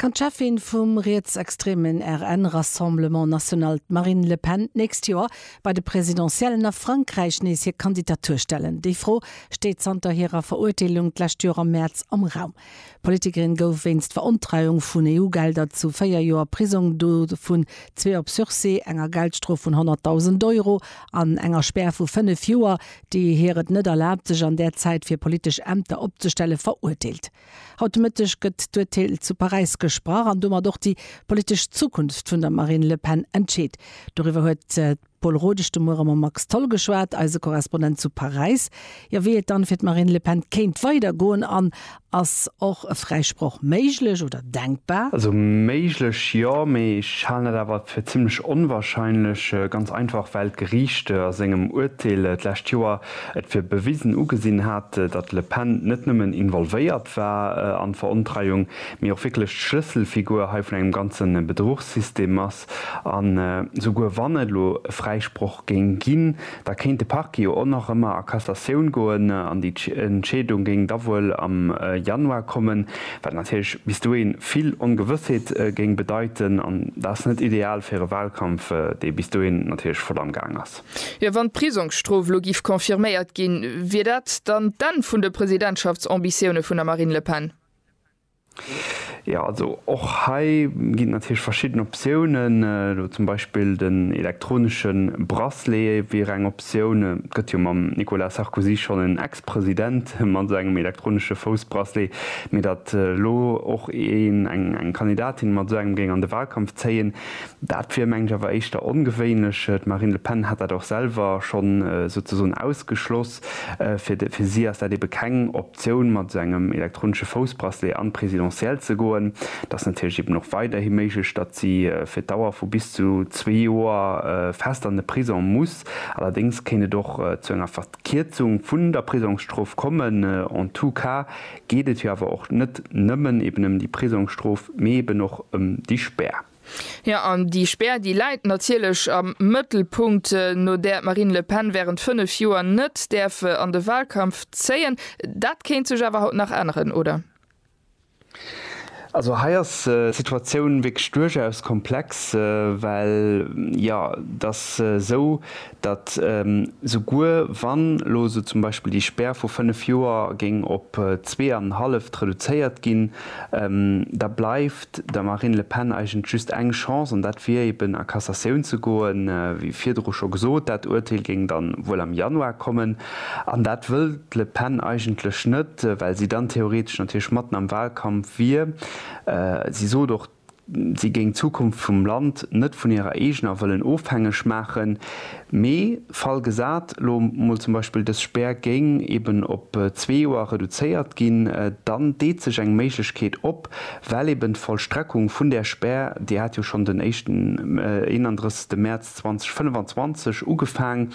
Kann d'Cheffin vum rietsextremen RN, Rassemblement National, d'Marine Le Pen d'nächst Joer bei de Presidentiellen a Frankräich nees hir Kandidatur stellen? Déi Fro steet zanter hirer Verurteelung d'lescht Joer am Mäerz am Raum. D'Politikerin gouf wéinst Verontreiung vun EU-Gelder zu véier Joer Prisong, dovun zwee op Sursis, enger Geldstrof vun 100.000 Euro an enger Spär vu fënnef Joer, déi hir et net erlaabt, sech an där Zäit fir politesch Ämter opzestellen, verurteelt. Haut de Mëtteg gëtt d'Urteel zu Paräis gesprach an domat och déi politesch Zukunft vun der Marine Le Pen entscheet. Doriwwer huet Paul Rodesch, De Muere mam Max Tholl geschwat, eise Korrespondent zu Paräis. Jo, wéi et dann fir d'Marine Le Pen kéint weider goen an ass och e Fräisproch méiglech oder denkbar? Also méiglech jo, mee ech halen dat awer fir zimmlech onwahrscheinlech, ganz einfach well d'Geriicht a sengem Uerteel d'lescht Joer et fir bewisen ugesinn hat, datt Le Pen net nëmmen involvéiert war an d'Verontreiung, mee och wierklech d'Schlësselfigur hei vun engem ganze Bedruchssystem ass. Text. An esouguer wann et elo e Fräisproch géing ginn, da kéint de Parquet jo och nach ëmmer a Cassatioun goen an déi Entscheedung géing da wuel am Januar kommen, wat natierlech bis dohin vill Ongewëssheet géing bedeiten. An dat ass net ideal fir e Wahlkampf, dee bis dohin natierlech voll am Gaang ass. Jo, wann d'Prisongsstrof elo giff confirméiert ginn, wier dat dann d'Enn vun de Presidentschaftsambitioune vun der Marine Le Pen? Jo, also och hei ginn et natierlech verschidden Optiounen. Elo zum Beispill den elektronesche Bracelet wier eng Optioun. Et gëtt jo mam Nicolas Sarkozy schonn en Ex-President mat esou engem elektronesche Foussbracelet. Mee datt elo och een, eng Kandidatin mat esou engem géing an de Wahlkampf zéien, dat wier meng ech awer éischter ongewéinlech. D'Marine Le Pen hat dat och selwer schonn souzesoen ausgeschloss. Fir si ass dat ebe keng Optioun. D'Optioun mat esou engem elektronesche Foussbracelet an d'Presidentielle ze goen, dat ass natierlech eben och weiderhi méiglech. Datt si fir d'Dauer vu bis zu zwee Joer fest an de Prisong muss. Allerdéngs kéint et och zu enger Verkierzung vun der Prisongsstrof kommen. En tout cas geet et jo awer och net nëmmen eben ëm déi Prisongsstrof, mee eben och ëm déi Spär. Jo, an déi Spär, déi läit natierlech am Mëttelpunkt, no där d'Marine Le Pen wärend fënnef Joer net däerf an de Wahlkampf zéien. Dat kéint sech awer haut nach änneren, oder? Also hei ass d'Situatioun wierklech duerchaus komplex, well, jo, et ass esou, datt souguer wann elo esou zum Beispill déi Spär vu fënnef Joer géing op zwee an en halleft reduzéiert ginn, da bleift der Marine Le Pen eigentlech just eng Chance, an dat wier eben a Cassatioun ze goen. Wéi virdru scho gesot, dat Urteel géing dann wuel am Januar kommen, an dat wëll d'Le Pen eigentlech net, well si dann theoretesch natierlech matten am Wahlkampf wier. Si sot och, si géing d'Zukunft vum Land net vun hirer eegener wëllen ofhängeg maachen, mee Fall gesat lo mol zum Beispill dës Spär géing eben op zwee Joer reduzéiert ginn, dann deet sech eng Méiglechkeet op, well eben d'Vollstreckung vun där Spär, déi hat jo schonn den éischten 31. Mäerz 2025 ugefaang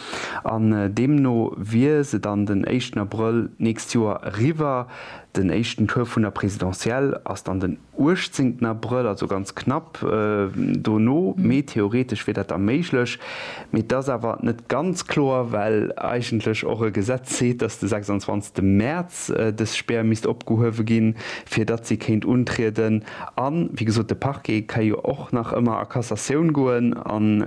an deemno wier se dann den éischten Abrëll d'nächst Joer eriwwer, den éischten Tour vun der Présidentielle ass dann den. 18. Abrëll, also ganz knapp dono, mee theoretesch wier dat da méiglech. Mee t'ass awer net ganz kloer, well eigentlech och e Gesetz seet, datt de 26. Mäerz dës Spär misst opgehuewe ginn, fir datt si kéint untrieden. A wéi gesot, de Parquet ka jo och nach ëmmer a Cassatioun goen an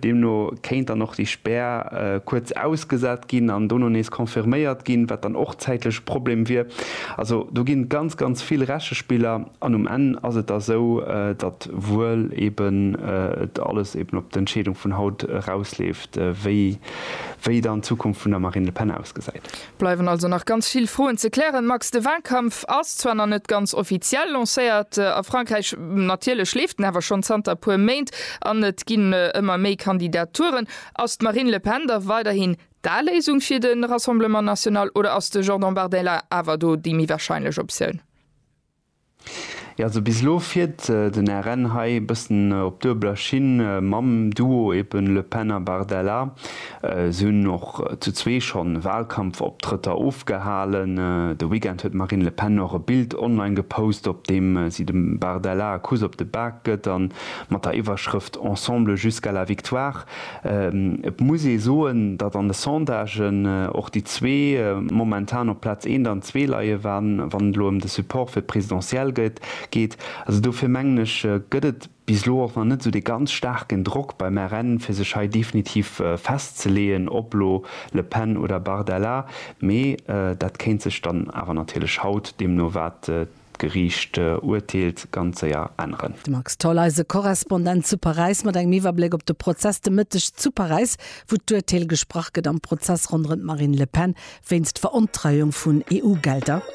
deemno kéint dann och déi Spär kuerz ausgesat ginn an dono nees confirméiert ginn, wat dann och zäitlech e Problem wier. Also do ginn ganz, ganz vill Rechespiller an um Enn ass et da sou, datt wuel eben et alles eben op d'Entscheedung vun haut erausleeft, wéi, wéi dann d'Zukunft vun der Marine Le Pen ausgesäit. Bleiwen also nach ganz vill Froen ze klären, Max. De Walkampf ass zwar nach net ganz offiziell lancéiert a Frankräich, natierlech leeft en awer schonn zanter e puer Méint an et ginn ëmmer méi Kandidaturen. Ass d'Marine Le Pen da weiderhin D'A Léisung fir de Rassemblement National oder ass de Jordan Bardella awer do déi méi warscheinlech Optioun? Jo, also bis elo fiert den RN hei e bëssen op duebeler Schinn mam Duo eben Le Pen a Bardella. Si hunn och zu zwee schonn Walkampfoptrëtter ofgehalen. De Weekend huet d'Marine Le Pen och e Bild online gepost, op deem si dem Bardella e Kuss op de Bak gëtt a mat der Iwwerschrëft Ensemble jusqu'à la victoire Et muss ee soen, datt an de Sondagen och déi zwee momentan op Plaz eent an zwee leien, wann et elo ëm de Support fir d'Presidentielle geet. Also dofir mengen ech, gëtt et bis elo och nach net esou dee ganz staarken Drock beim RN, fir sech hei definitiv festzeleeën, ob elo Le Pen oder Bardella. Mee dat kéint sech dann awer natierlech haut, deemno wat D'Geriicht urteelt ganz séier änneren. De Max Tholl, eise Korrespondent zu Paräis mat engem Iwwerbléck op de Prozess de Mëtteg zu Paräis, wou d'Urteel gesprach gëtt am Prozess ronderëm d'Marine Le Pen wéinst Verontreiung vun EU-Gelder.